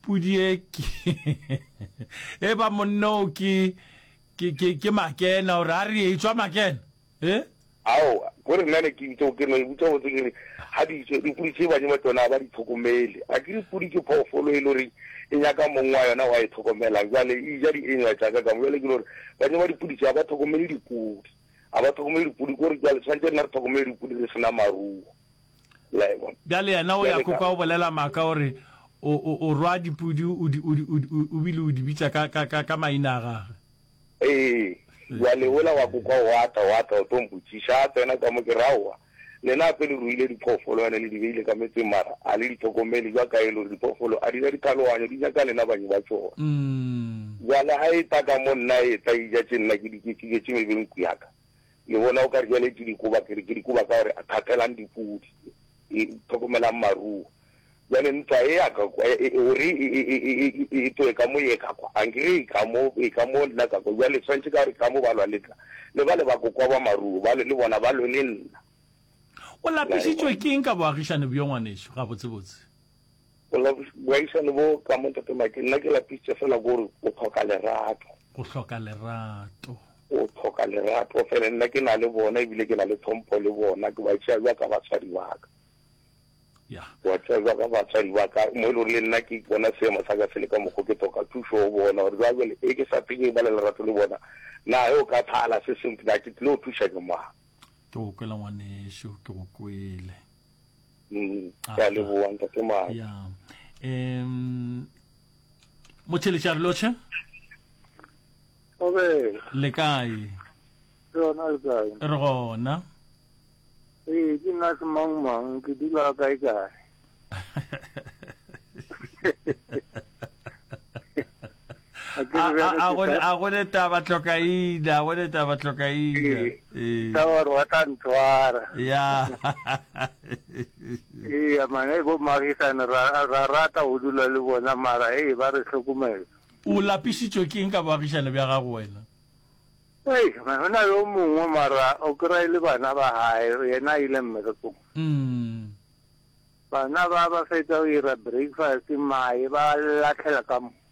Pudi e ke e ba monna o ke ke ke ke makena gore a re etswa makena e. Aowa ko re nna ne ke itse ke no e butsa botse ke re ha di itse di pudi tse banye ba tsona ba di tlhokomele a ke di pudi ke phoofolo e le gore e nyaka mong wa yona wa e tlhokomelang jwale e ja di enywa tsa ka ka mo jwale ke gore banye ba dipudi tse ba tlhokomele dipudi a ba tlhokomele dipudi ko re jwale tshwantse nna re tlhokomele dipudi re sena maruo La e bona? Bjale yena o ya Bjale ko ka- kwa o bolela maaka o re o, o, o rwa dipudi o di, o di, o di, o, o bile o di bitša ka, ka, ka, ka maina a gagwe. Ee, bjale ola wa ko kwa wa tla, wa tla o tlo mpotšiša. A tsena ka mo ke re, Aowa, lena gape le ruile diphoofolo ene le di beile ka metseng mara a le di tlhokomele jwa kae le gore diphoofolo a di ja diphaloganyo, di ja ka lena banyi ba tšona. Mm. Bjale ga e tla ka mo nna e tla e ja tše nna ke di ketšiketše mebeng ku ya ka. Le bona o ka re jale ke dikoba, ke re ke dikoba ka gore a kgathelang dipudi, e tlhokomelang maruo. Jale ntwa e ya ka kwa, e gore e tloe ka mo ye ka kwa, ankere e ka mo, e ka mo nna ka kwa. Jale tshwanetse ka gore ka mo ba lwa le tla, le ba le ba kokwa ba maruo ba le, le bona ba lwe le nna. O lapišitšwe ke eng ka boagišani bjo, ngwanešu, gabotsebotse? Bola boaisane bo ka mo Ntate Mike, nna ke lapisitše fela gore o tlhoka lerato. O hloka lerato. O tlhoka lerato fela, nna ke na le bona ebile ke na le tlhompho le bona, ke ba tšea jwa ka batswadi ba ka. Ya. Ke ba tšea jwa ka batswadi ba ka, mo e le gore le nna ke bona seemo sa ka se le ka mokgwa ke tlhoka thušo go bona gore jwa jwale e ke sa tle ke ba le lerato le bona, na ge o ka thala se sengwe, na ke tlile go thuša ke mang? Ke go kwela ngwanešu, ke go kwele. ke a leboa ntate mane ya um motheletšare lotlhe obe le kae ke yona le kae re gona ee ke nna se mang mang ke dula kae kae a go le taba tlokaina a go le taba tlokaina ka gore wa tla ntshwara ya ee mane bo magisane ra rata go dula le bona mara ee ba re tlhokomela o lapisitswe ke eng ka boagišane bja gago wena ee go na yo mongwe mara o kry e le bana ba gae yena a ile mmerekong mm. bana ba ba fetsa go ira breakfast maye ba latlhela ka mo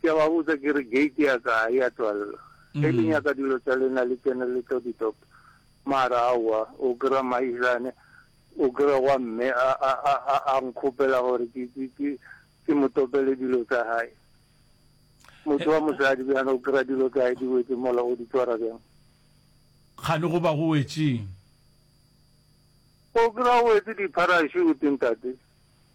Ke a ba botsa ke re, Gate ya ka ga e a tswalela? Ge le nyaka dilo tša lena le tsene le tlo di topa. Mara aowa, o kry-a Mmaisane, o kry-a wa mme a, a, a, a, a nkgopela gore ke, ke, ke, ke mo topele dilo tsa gae. Motho wa mosadi bjana o kry-a dilo tsa gae di wetše mola, o di tšwara bjang? Kgane go ba go wetšeng? O kry-a o wetse di-parachute, ntate.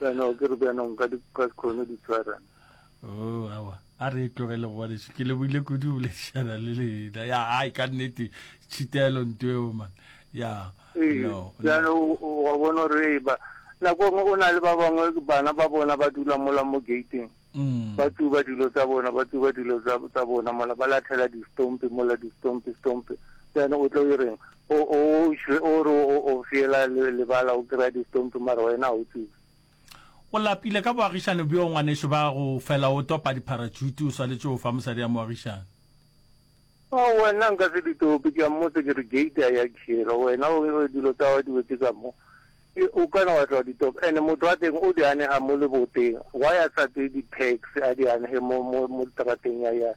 Bjana ke re bjana nka di ka khone di tshwara. Oh awa a re e tlogele go bane ke leboile kudu o boledišana le lena ya ai ka nnete tšhitelo nto eo man ya Ee, no bjana no o o- wa bona gore e ba nako nngwe o na le ba bangwe bana ba bona ba dula mola mo gateng Ba tsuba dilo tsa bona, ba tsuba dilo tsa, tsa bona mola, ba lathela distompi mola, distompi, stompi. Then o tlo ireng? O, o, o šwe, o re o, o fiela le, lebala, o kry-a distompi mara wena ga o tsube. O lapile ka boagišane bjo, ngwanešu, ba go fela o topa dipharatšhuti, o swanetše go fa mosadi ya moagišane. Ao, wena nka se di tope, ke a mmotsa ke re, gate a ya tšhela, wena o, dilo tsa gago di wetše ka mo, e, o ka na wa tla wa di topa, and motho wa teng o di anega mo leboteng, why a sa tseye di pegs a di anege mo, mo, mo literateng ya, ya,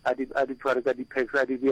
a di, a di tshware ka di pegs a di bea.